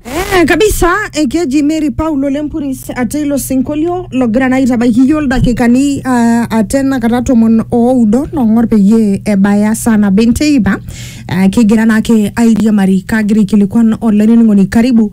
Eh, kabisa eh, keji Mary Paulo Lempuris ate ilo sinkolio logira naa aitabaiki iyiook ildakikani uh, ate nakata tomon oudo long'or peyie ebaya saa nabo enteipa uh, kigira naake airiamari kagira aikilikuan olainining'oni karibu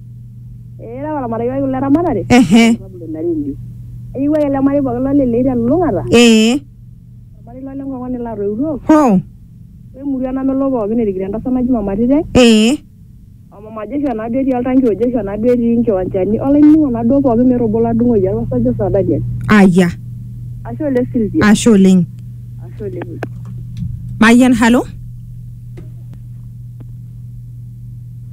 Eira olamaraikai le ramatare ehe sababu ina redio. Eyieu ake ele marei pooki lolelei telulung'ata, ee olmarei lole ng'ong'oni latoiutuo, hoo wemurua namelok pooki erikito entasat naji Mama Tite, ee o Mama Joshua naa duo etii oltanki o Joshua naa duo etii nkiwanchani olainining'oni naa duo pooki meeta obo ladung'oyie arashu ajo saa Daniel. aya Ashe oleng Sylvia. ashe oleng Ashe oleng. mayian halo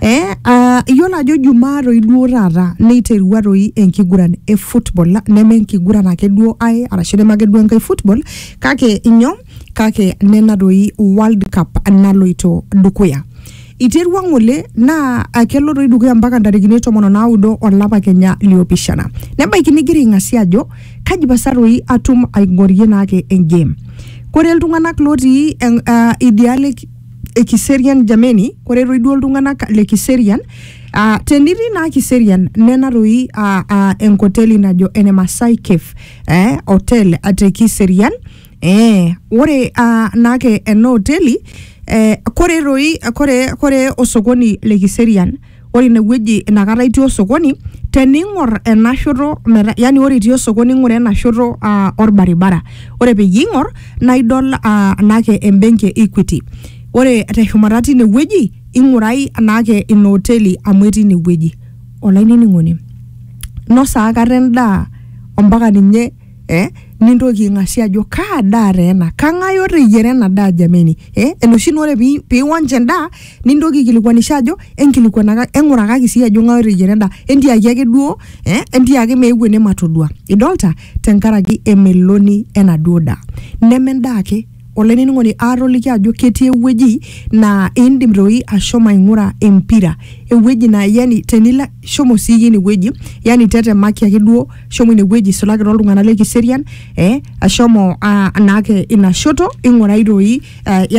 Eh, ah, iyiolo ajo jumaa toi duo taata neiterua toi enkiguran e football la- neme enkiguran ake duo ae arashu neme ake duo enkae football kake inyo kake nena toi world cup naloito dukuya iterua ng'ole naa ah, kelo toi dukuya mpaka ntarikini tomon onaudo olapa kenya liopishana nebaiki nigira aing'asia ajo kaji pasa toi atum aing'orie naake engame kore iltung'anak lotii en- ah, idialo e ki- e Kiserian jameni, ore toi duo iltung'anak le Kiserian uh, tenitii naa Kiserian nena toi uh, uh, enkoteli najo ene Masai Cave eh, hotel te Kiserian eh, ore uh, naake ena hoteli eh, kore toi kore, kore osokoni le Kiserian ore inewueji inakata itii osokoni tening'or ena shoto meta yani ore itii osokoni ing'ura ena shoto uh, orbaribara ore peyie ing'or naa idol uh, naake embenki e equity ore teshumata tine wueji ing'urai naake ina hoteli amu etii ine wueji olainining'oni nosa akata endaa ompaka ninye eh, nintoki aing'asie ajo kaa daa taa ena kang'ae oteyiera ena daa jameni eh, enoshi naa ore pi- piwonch endaa nintoki aikilikuanisha ajo enkilikuanaka eng'urakaki sii ajo ng'ae oteyiera endaa entiaki ake duo eh, entiaki meeu ene matodua idolta tenkaraki emeloni enaduo daa neme endaa ake olainining'oni aatoliki ajo ketii ewueji naa indim toi ashomo aing'ura empira ewueji naa yani tenilo shomo siiyie ine wueji yani tetemaki ake duo shomo ine wueji isulaki toltung'anak le kiserian eh ashomo uh, naake ina shoto ing'urai toi uh, yani